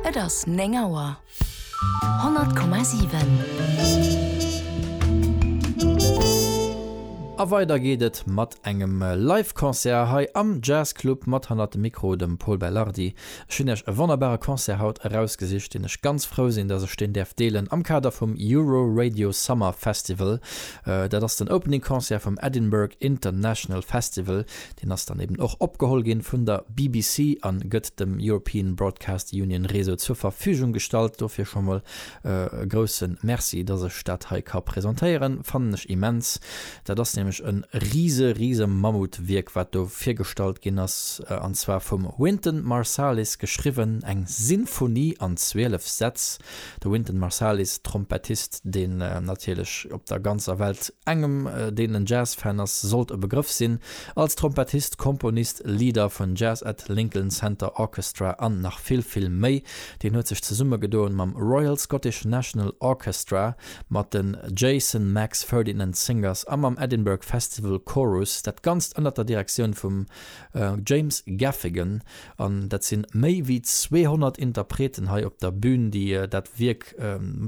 Et ass 9 Auer. 100,7. A weider geet et mat engem Live Concert hei am Jazz Club mat hannert dem Mikro dem Pol Beilhardi. Ech hunn iech e wonnerbare Concert haut erausgesicht, deen ech ganz frou sinn, datt ech deen däerf deelen am Kader vum Euro Radio Summer Festival. Dat ass den Opening Concert vum Edinburgh International Festival. Deen ass dann eben och opgeholl ginn vun der BBC an gëtt dem European Broadcast Union Réseau zur Verfügung gestallt. Dofir scho mol e groussen Merci dass ech dat hei ka presentéieren. Fannen ech immens. Dat ass nämlech en riese riese Mammutwierk wat do virgestallt ginn ass an zwar vum Wynton Marsalis geschriwwen eng Sinfonie an 12 Sätz. De Wynton Marsalis, Trompettist, deen natierlech op der ganzer Welt engem deen en Jazz-Fan ass, sollt e Begrëff sinn. Als Trompettist, Komponist, Leader vun Jazz at Lincoln Center Orchestra an nach vill, vill méi. Deen huet sech zesummegedoen mam Royal Scottish National Orchestra, mat den Jason Max Ferdinand Singers a mam Edinburgh Festival Chorus. Dat Ganzt ënnert der Direktioun vum James Gaffigan, An dat si méi wéi 200 Interpreten hei op der Bün, déi dat Wierk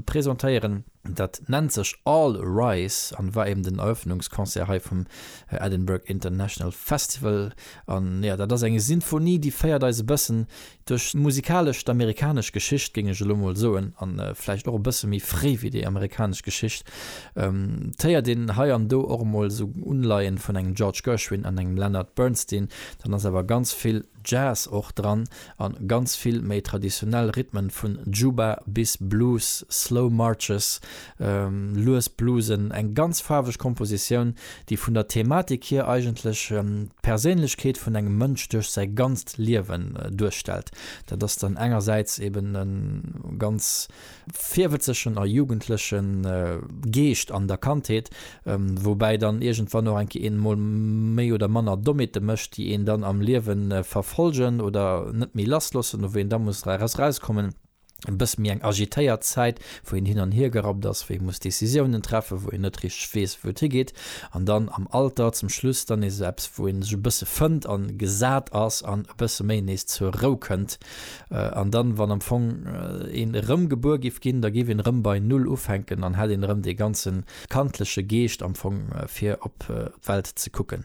presentéieren. Dat nennt sech All Rise an war eben den Eröffnungsconcert hei vum Edinburgh International Festival. An jo, dat ass eng Sinfonie, déi féiert eis e bëssen duerch musikalesch d'amerikanesch Geschicht, géing ech elo mol soen, an vläicht och e bësse méi fréi wéi déi amerikanesch Geschicht. Et héiert een hei an do och emol esou Unleien vun engem George Gershwin an engem Leonard Bernstein. Dann ass awer ganz vill Jazz och dran an ganz vill méi traditionell Rhythmen vun Juba bis Blues, Slow Marches, lues Bluesen, eng ganz faarweg Kompositioun, déi vun der Thematik hier eigentlech d'Perséinlechkeet vun engem Mënsch duerch säi ganzt Liewen duerstellt. Dat ass dann engersäits eben e ganz. virwëtzegen a jugendleche Geescht an der Kandheet, woubäi dann iergendwann och eng Kéier een emol méi oder manner Dommheete mécht, déi een dann am Liewe verfollgen oder net méi lassloossen, a wou een da muss erauskommen. E bësse méi eng agitéiert Zäit, wou een hin an hier gerappt ass, wou ee muss Décisiounen treffen, wou een net richteg weess, wou et higeet. An dann am Alter zum Schluss dann nees esou eppes, wou ee sech e bësse fënnt a gesat ass an e bësse méi nees zur Rou kënnt. An dann, wann am Fong een erëm gebuer giff ginn, da giff een erëm bei Null ufänken an hätt een erëm dee ganze kandleche Geescht am Fong fir op d'Welt ze kucken.